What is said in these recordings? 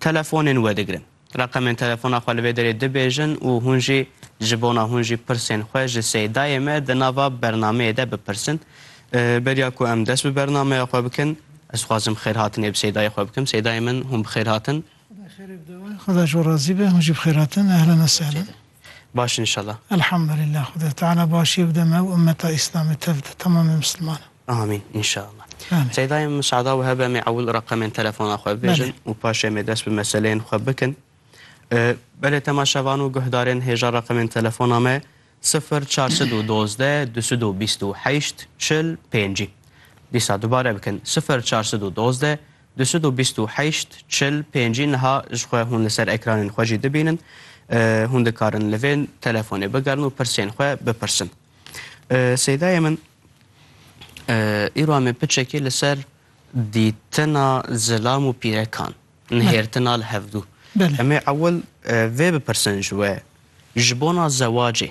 Telefonên wedigirin. Reqemên telefona xwe li vê derê dibêjin û hûn jî ji bona hûn jî pirsên xwe ji Seydayê me di nava bernameyê de bipirsin. Beriya ku em dest bi bernameya xwe bikin, ez dixwazim xêrhatinê bi Seydayê xwe bikim. Seydayê min, hûn bi xêr hatin. Xweda xêrê bide wan. Xweda ji we razî be. Hûn jî bi xêr hatin. Ehlen esehlen. Baş in inşallah. Elhamdulillah Xuda Teala başiyê bide me û ummeta Îslamê tev de temamê Mislimanan. Amîn inşallah. Amîn. Seyda em misada wiha be em ê ewil reqemên telefona xwe bibêjin û paşê em ê dest bi meseleyên xwe bikin. Belê temaşevan û guhdarên hêja reqemên telefona me sifir çar sed û dozdeh du sed û bîst û heşt çil pêncî. Dîsa dubare bikin sifir çar sed û dozdeh Du sed û bîst û heşt, çil, pêncî niha ji xwe hûn li ser ekranên xwe jî dibînin. Hûn dikarin li vê telefonê bigerin û pirsên xwe bipirsin. Seydayê min, îro em ê piçekî li ser dîtina zilam û pîrekan, nihêrtina li hevdû. Em ê ewil vê bipirsin ji we, ji bona zewacê,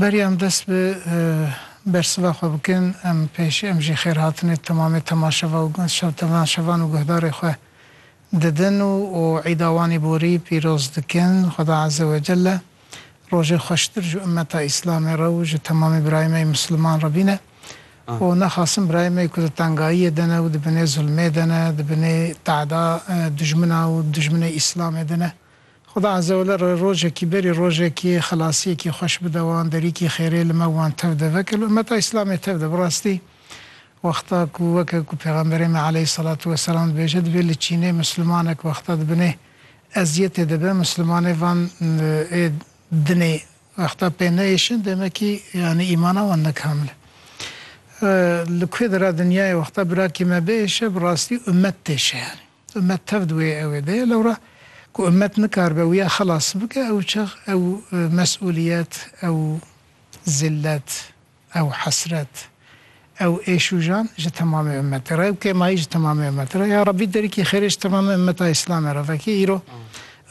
Berî em dest bi bersiva xwe bikin, em pêşî em jî xêrhatinê temamê temaşeva û şevtemaşevan û guhdarê xwe didin û û îda wan ê borî pîroz dikin. Xweda Eze Wecelle rojê xweştir ji ummeta Îslamê re û ji temamê birayê me yê Misliman re bîne û naxasin birayê me yê ku di tengayiyê de ne û di binê zulmê de ne, di binê teada dijmina û dijminê Îslamê de ne Xuda Azewele re rojekî berî rojekî xelasiyekî xweş bide wan, derîkî xêrê li me wan tev de veke li ummeta Îslamê tev de. Bi rastî wexta ku weke ku pêxemberê me aleyhîsselatu weselam dibêje dibê li Çînê mislimanek wexta di binê eziyetê de be mislimanê van ê dinê wexta pê neyêşin demekî yanî îmana wan ne kamil e. Li ku de ra dinyayê wexta birakê me bihêşe bi rastî ummet têşe yanî. Ummet tev di wê ewê de ye, lewra ku ummet nikaribe wiya xelas bike, ew çax ew mes'uliyet, ew zillet, ew hesret, ew êşûjan ji temamê ummetê re, ew kêmayî ji temamê ummetê re. Ya Rabbî derîkî xêrê ji temamê ummeta Îslamê re vekî. Îro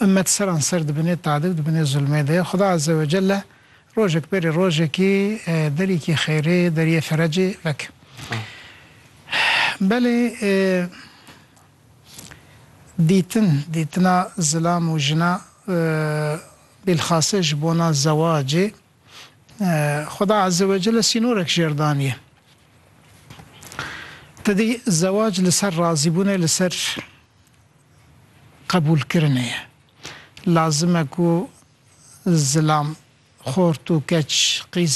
ummet seranser di binê tade û di binê zulmê de ye. Xuda Azze wecelle Rojek berê rojekî derîkî xeyrê deriyê ferecê vek. Belê dîtin, dîtina zilam û jina bîlxase ji bona zewacê Xweda Ezzewecelle sînorek jêr daniye. Tedî zewac li ser razîbûnê li ser qebûlkirinê ye. Lazim e ku Zilam, xort û keç qîz.